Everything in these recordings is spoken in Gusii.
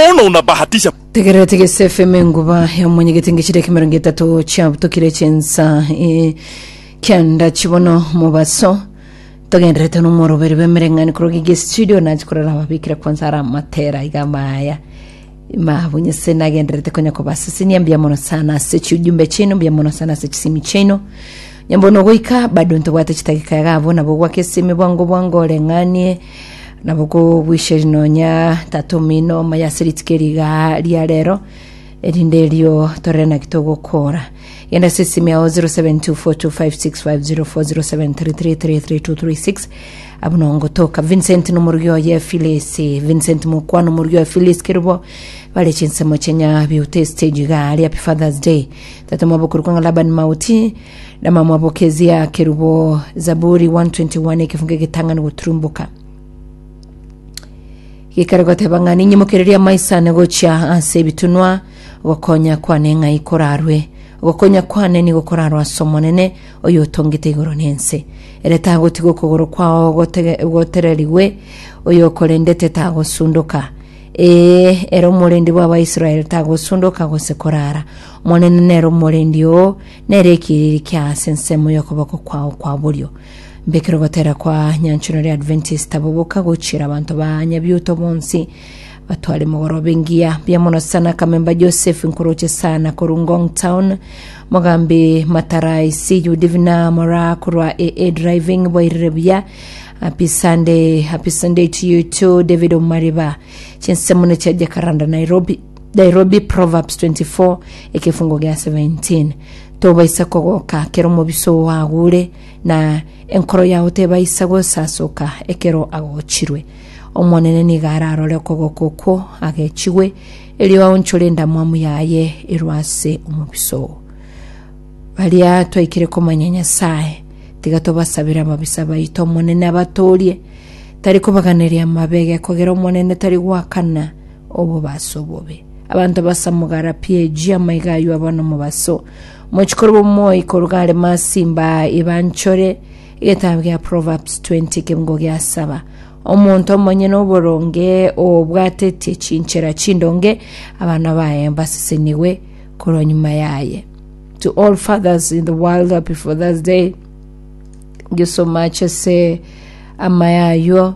Ona unabahatisha Tegerera tegese FM enguba ya omonyegete ngechire ekemerongo etato chiabutokire chensa e, kianda chibono mobaso togenderete nomoroberi bwemereng'ani korogi gestudio nachi korora ababikire kwanza ara amatera iga maya mabunyese nagenderete konya kobasisinia mbuya mono sana ase chiujumbe chiaino mbuya mono sana ase chisimi chiaino nyambono goika bado ntobwate chitagika iga abwo nabo gwake esimi bwango bwango oreng'anie Nabo kobwisheri nonya tatomino omaya ase rituko eri iga ria rero, erinde erio torere naki togokora. Genda ase esimi yao 072425604073332336 abwo no ngotoka. Vincent nomorugi oye Phyllis, Vincent mokwana omorugi oye Phyllis Kerubo, bare chinsemo chienya Beauty Stage iga ria Happy Father's Day. Tatomwabo okorokwa ng'a Laban Mauti, Namamwabo kezia kerubo Zaburi 121 ekefunga egetang'ani goturumboka gikare goteba ng'a ninyemokereria amaisane gochia ase ebitunwa gokonya kwane ng'ai korarwe gokonya kwane nigo korarwa ase omonene oyo otongete igoro na ense ere tagotiga okogoro kwao gote- gotererigwe oyo okorendete tagosundoka ee ere omorende bw'abaisraeli tagosundoka gose korara Omonene nere omorendi oo, nere ekiriri kia ase ensemo y'okoboko kwao kwa borio. Mbekire ogotera kwa Nyanchwa Nore Adventist abo boka gochiera abanto ba Nyabiuto bonsi batware mogoroba engiya. Mbuya mono sana Kamemba Joseph, nkoroche sana korwa Ngong Town. Mogambi Matara I see you Divina Mora korwa AA Driving boirire buya. Happy Sunday, happy Sunday to you too David Omariba. Chinsemo ne chia Jacaranda Nairobi. Nairobi Proverbs 24 ekefungo gea 17 Tobaisa kogoka kero omobisa oo agure, na enkoro yao tebaisa gosasoka ekero agochirwe. Omonene nigo ararore okogoka okwo agechigwe, erio aonchore endamwamu yaye erwe ase omobisa oo. Baria twaikire komanya Nyasae, tiga tobasabere ababisa baito Omonene abatoorie. Tari kobaganeria amabe, gekogera Omonene tari goakana, Obobaso obobe. Abanto basamogara pi eji amaiga aywo aba nomobaso. Mochi korwa omoi koruga are masimba ibanchore. Egetabu gia Proverbs 20 ekeungo gia saba. Omonto omonyene oboronge obwatetie chinchera chindonge, abana baye basesenigwe korwa nyuma yaye. To all fathers in the world, happy Father's Day. Thank you so much ase amaya aywo.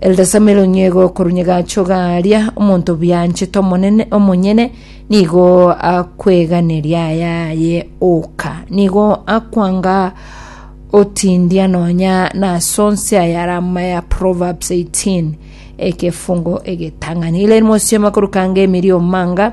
Elde sameronyego korunyega achoga aria, omonto bwanchete omonene omonyene nigo akweganeria ayaye oka, nigo akwanga otindia nonya nasonse ayare amaya Proverbs 18 ekefungo egetang'ani. Ile mosioma korukanga emerio manga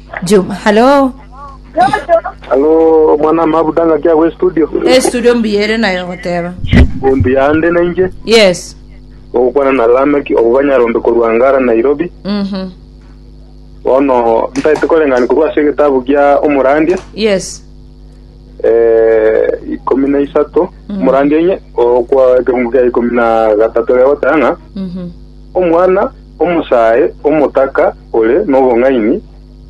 juma halo Halo, mwana mabuda ngaki agwo estudio. estudio mbiyere nayo goteba Ombi yande na inje. yes Ogokwana na Lameki obobanyarombe korwa Ngara Nairobi. mhm Bono ntaete koreng'ani korwa ase egetabu gia Omorandia. yes Eh, ikomi na isato. Omorandia inye okwa ekeungu kia ikomi na gatato gegotanga. mhm Omwana Omosae omotaka ore nobong'aini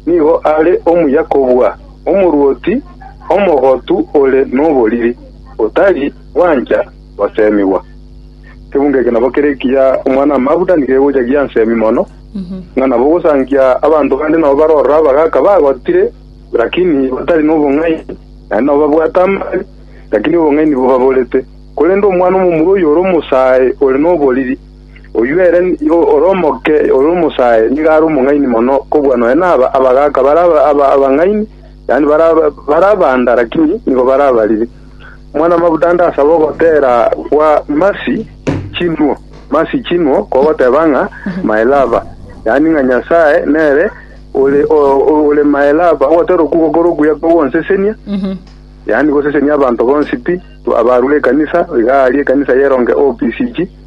nigo are omuya kobua omorwoti omogotu ore noboriri, otari gwancha goseemigwa. Ekegungo eke nabo kere ekiya omwana-o-mabuda nigegocha giansemi mono, ng'a nabo ogosangia abanto bande nabo barorora abagaaka bagotire, lakini batari nobong'aini, naende nabo babwate amang'ana, lakini obong'aini bobaborete. Korende omwana omomura oyo ore omosae ore noboriri. Oyio ere ore omoke ore omosae nigo are omong'aini mono kobua nonya naba abagaaka bare abang'aini, yaani bare abanda, lakini nigo bare abariri. Omwana-mabuta ande asabe ogotera gwa Mercy Chinwo, Mercy Chinwo, kogoteba ng'a my lover, yaani ng'a Nyasae nere ore ore my lover, ogotera okwo gokora okuya kogonsesenia, yaani gosesenia abanto bonsi pi, abarure ekanisa, iga aria ekanisa y'eronge OPCG.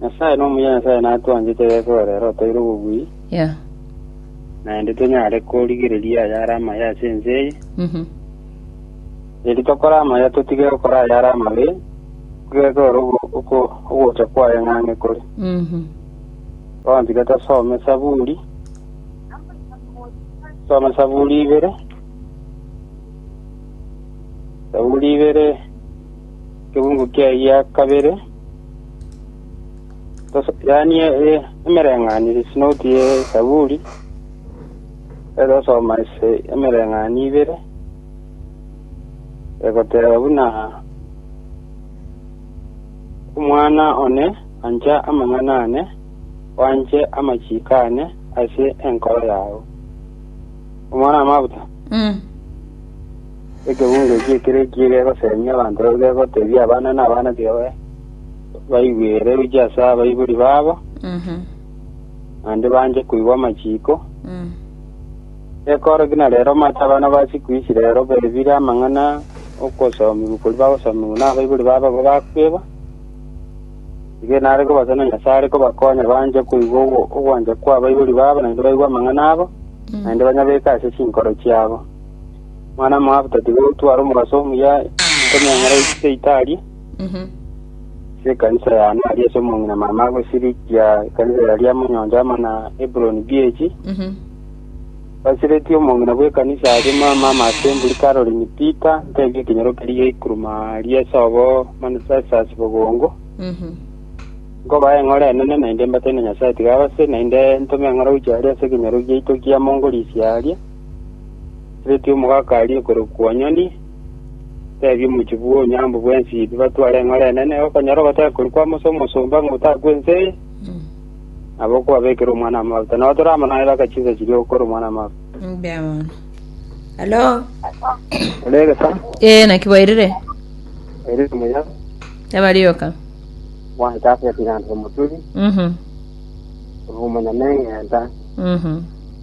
Nyasae nomuya Nyasae natwanchete gese ore ere otoire obobui, Yeah. naende tonyare korigereria ayare amaya ase ense eye. Mhm. Eri tokore amaya totige gokora ayare amabe, gese ore ogo- oko- ogocha kwaye ng'ang'e kore. Mhm. Bono tiga tosome Saburi. Some Saburi ibere. Saburi ibere Ekebugu kiaye gia kabere, tosasianie e- emereng'anio ye sinoti ye Zaburi, ere osoma ase emereng'anio ibere, egoteba buna omwana one ancha amang'ana ane, oanche amachiko ane ase enkoro yao. Omwana amabuta, Mm. Ekebungo ekio ekero ekiye gegoseemia abanto barabwo gegoteebia abana na abana b'oe baigwe ere gochia ase abaibori babo, naende banche koigwa amachiiko, gekoorokia na reero omate abana ba siku ici reero baebire amang'ana okosoomigwa koria bagosoomigwa nabaibori babo abwo bakwebwa, Inee nare kobasa na Nyasae are kobakonya banche koigwa ogo- ogwancha kw'abaibori babo naende baigwe amang'ana abo, naende banyabeke ase chinkoro chiabo. Mwana Moabu tati gotwara omogaso omuya nkomeng'era ise Itali, ase ekanisa yane aria ase omong'ina mama agosirikia ekanisa yaria amanyoncho amo na Hebroni bi'echi. Basiretie omong'ina bw'ekanisa aria mama amo ase emburi Caroline Pita ntebie ekenyoro keria geikuruma aria ase obo Manessas bogongo. Nkobae eng'ora enene naende mbatene Nyasae tiga abase naende ntome eng'ora gochia aria ase ekenyoro giaito kiamo ngorisia aria. Oretire omogaka aria okorokwa Onyoni, tebia omochie bwa Onyango bw'Ensiti batware eng'ora enene, okonyora ogotaka koria kw'Amosi omosomba ng'a otaka kw'ense eye, nabo okwabekera omwana amafuta. Nabo toramonanera aka chinsa chiria ogokora omwana amafuta. Mbuya mono. Halo. Ore egesa, Ee, naki bwairire? ere omuya, Abarioka. bwana chafeti ng'anto omoturi, Mhm. ore omonyameng'enta, Mhm.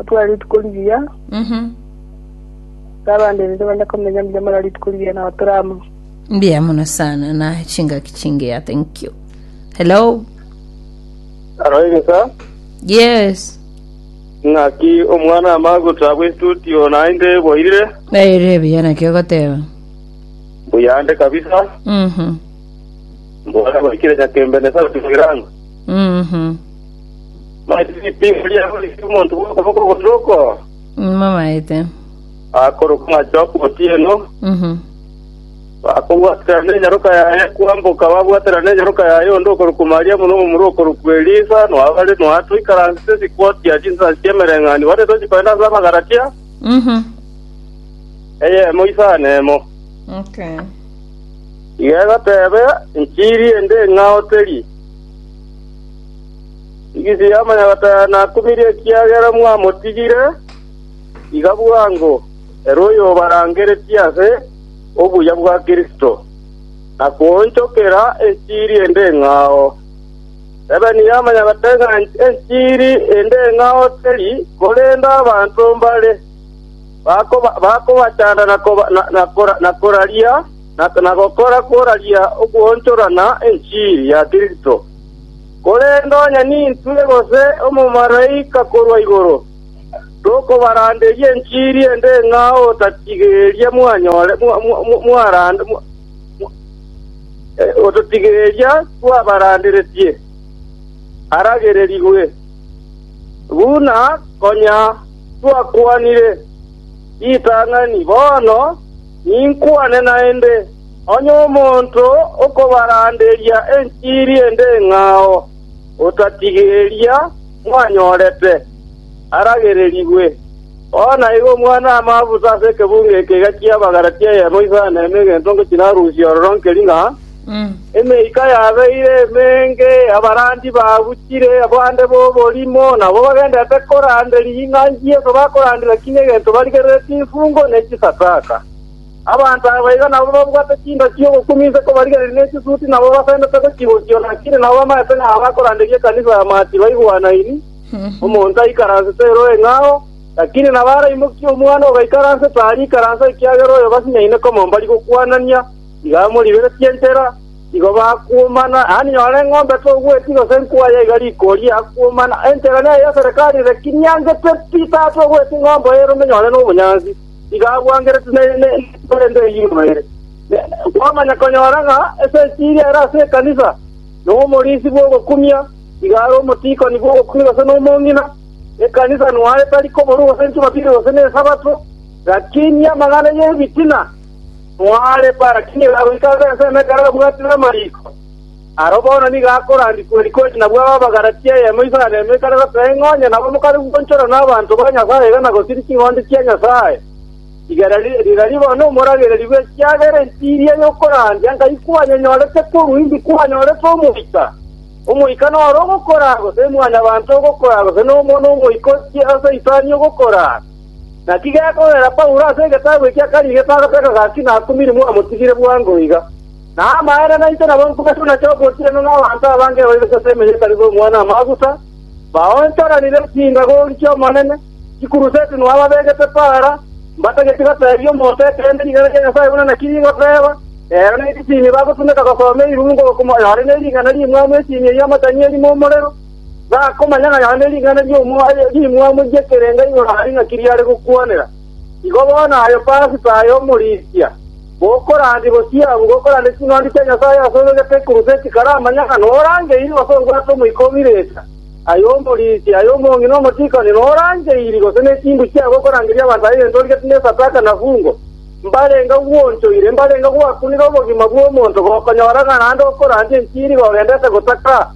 Atware rituko rigiya, Mhm. na abande rende bande komenya mbuya mara rituko rigiya nabo tore amo. Mbuya mono sana na chingaki chingiya. Thank you. Hello. Aroigesa Yes. ng'aki omwana amaguta bw'estudio naende boirire Naire buya naki ogoteba. buyande kabisa Mhm. mbona baikire nyakembe ne sauti bwiranga Mhm. Mati ripingo riabo riri omonto bw'okoboko ogosoko, Mamaete. akorokwa ng'acha okotieno, Mhm. bakobwaterana enyaroka yaye kwamboka, babwaterana enyaroka yaye onde okorokwa Mariamu na omomura okorokwa Elisa, noabare noatoikaransete chikotia chinsansi chi'emereng'ani, bare tochi kogenda ase Abagalatia, Mhm. eyemo isano emo. Okay. Iga egatebe, Enchiri ende ng'a oteri. Igisi y'amanyagataya nakumirie ekiagera mwamotigire, iga bwango ere oyobarangeretie ase obuya bwa Kristo, na koonchokera enchiri ende eng'ao. Ebeni y'amanyagataya ng'a enchiri ende eng'ao teri, korende abanto mbare bakoba- bakobachanda na koba- na- na- na koraria, na gokora kw'oraria okwonchorana enchiri ya Kristo. Korende onye nintwe gose omomalaika korwa igoro, tokobaranderia enchiri ende ng'a otatigeria twabaranderetie, aragererigwe, buna konya twakwanire ritang'ani bono. Ninkwane naende, onye omonto okobaranderia enchiri ende eng'ao, otatige eria mwanyorete, aragererigwe. Bono aiga Omwana-o-amaabuse ase ekebungo eke egachia abagara chi'eyemo isano na ime egento ngochia narusia ororo nkeri ng'a, Emeika yabeire emenge, abarandia baguchire, abande b'oborimo nabwo bagenderete koranderia ring'ana Yeso bakoranderia ki negento barigerereti imfungo ne chisadaka. Abanto aba iga nabwo babwate chinda chi'ogokumia inse kobarigereria ne chisuti nabo basendete gochigokia lakini nabo bamaete ng'a abakoranderia ekanisa ya Maati baigwanaini, omonto aikaransete ere oeng'ao, lakini nabo araimokia omwana ogaikaransete aria ikaransa ekiagera oyo basinyaine komombari gokwanania. Iga moriberetie entera, igo bakuumana. Yaani nyora eng'ombe togweti gose nkwaya iga rikoria yakuumana, entera neye ya Serikali reki niangete pi, tatogweti ng'ombe oyo erome nyore nobonyansi, iga abwangerete ne etuko rende erimo ere. Kwamanya konyora ng'a esechiri ere ase ekanisa, nomorisi bw'ogokumia, iga are omotiikoni bw'ogokumia gose nomong'ina, ekanisa nware tari koborwa gose Jumapili gose ne Esabato, gaki niamang'ana y'ebitina. Mwarebe ara ki nigo agoika ase ensemo ekero abwatire amariiko? Aro bono nigo akorandia Kuerikosi na bwabo Abagalatia eyemo iso na nemo ekare goteba ing'o onye nabo mokare gwanchorwa nabanto ba Nyasaye iga na gosiria ching'ondi chia Nyasaye? Rigererie bono omoragereri bwe chiagera ense eria y'okorandia nkai kwanyenyorete korwa indi kwanyorete omoika. Omoika noro ogokoraa, gose mwanyabanto ogokoraa, gose nomono omoika ochie ase isani ogokoraa? Naki gekorera Paulo ase egetabu ekia kabere getagotaka gaki nakumire mwamotigire bwango iga. Na amaene nainche nabo nkoigwa nache ogotienwa nabanto abange bairogete ase emeyo etari gokwa namaguta, baonchoranire chingagori chi'Omonene, chikuruseti nonya babegete paara, mbatageti goteebia omonto ekeene rigena ria Nyasae buna naki rigoteba, ero nerisimi bagotumeka gosoma eirungu okomoyore ne rigena ri'emwamu esimi ey'amatang'e erimo omorero. Bakomanya ng'a yonde ring'ana rimwamu ri'ekerenga igoro aria ng'aki riare gokwanera. Igo bono aye Pasika aye omorisia, gokorandia bosio abwo, gokorandia ching'ondi chia Nyasae ase oyo ogete ekuruseti, karamanya ng'a norangeirwe gose obwate omoika o Mileta, aye omorisia, aye omongi na omotiikani, norangeiri, gose nechimbu chiabo okorangeria abanto aye egento origete nesadaka na fungo, mbarenge gwoonchoire, mbarenge gwakunire obogima bw'omonto, gokonyora ng'a naende okorandia enchiri gogendete gotaka.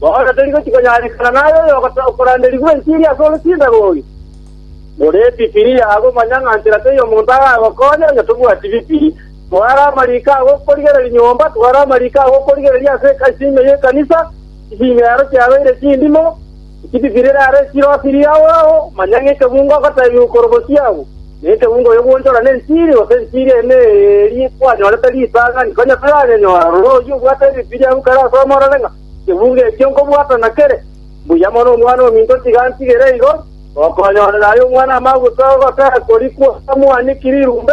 Bono tori gochia konyarekana naye oyo okoranderigwa enchiri ase orosinde rore. Morebi Bibilia agomanya ng'a nchera tei omonto aragokonye onye tobwati Bibilia. Tware amariko aa gokorigereria nyomba, tware amariko aa gokorigereria ase isimi y'ekanisa, isimi ero chiabeire chindimo, eki Bibilia erare chire osiri ao ao, manya ng'a ekebungo ogotebiwa korwa bosio abwo. Nekeungo oyo gwonchora nenchiri, gose enchiri ene eri kwanyorete ritang'ani, konya toyanyenyora, rora oyio obwate Ebibilia agwo kare asome orore ng'a ekeungo ekio nkobwata nakere. Mbuya mono Omwana-o-minto otiga antigere igo, gokonyorera aye omwana amaguta, ogotera korikwa, amwaniki rirumbe.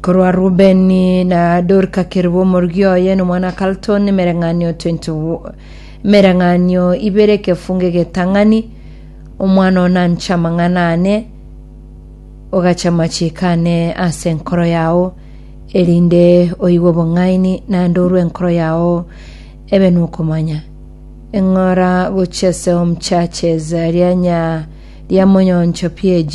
Korwa Rubeni na Dorka kerwa omorgia oye na omwana Carlton emereng'anio 20 emereng'anio ibere ekefungo egetang'ani omwana oo nanche amang'ana ane ogache amachiko ane ase enkoro yao erinde oigwe obong'aini naende orue enkoro yao ebe nokomanya eng'ora gochia ase home churches rianya ria Moyoncho PAG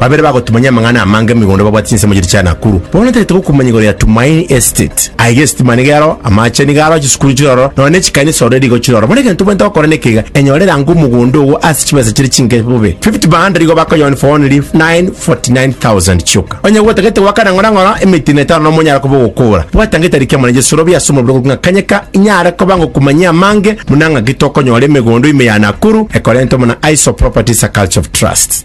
Babere bagotumanyia amang'ana amange migunda babwate chinsemo chiria chia Nakuru. Bono tagete gokumanya igoro ya Tumaini Estate. Aye gesitima nigo ero, amache nigo aro, chisukuru chire ororo, nonya ne chikanisa ororo rigo chire ororo. Bono egento obwenerete gokora nekeiga, enyore rango omogunda ogo ase chibesa chire chinke bobe. Fifty bhanda rigo bakoyoni for only 949,000 chioka. Onye gotagete goaka na ng'orang'ora emetina etano nomo onyare koba ogokora. Bwata ng'ita rikia mwana Jesu robi ase omobere okorwa ng'a kanyeka inyare koba ngokumanyia amange buna ng'aki tokonyora emegondo ime ya Nakuru ekorentwe buna Iso Properties a Culture of Trust.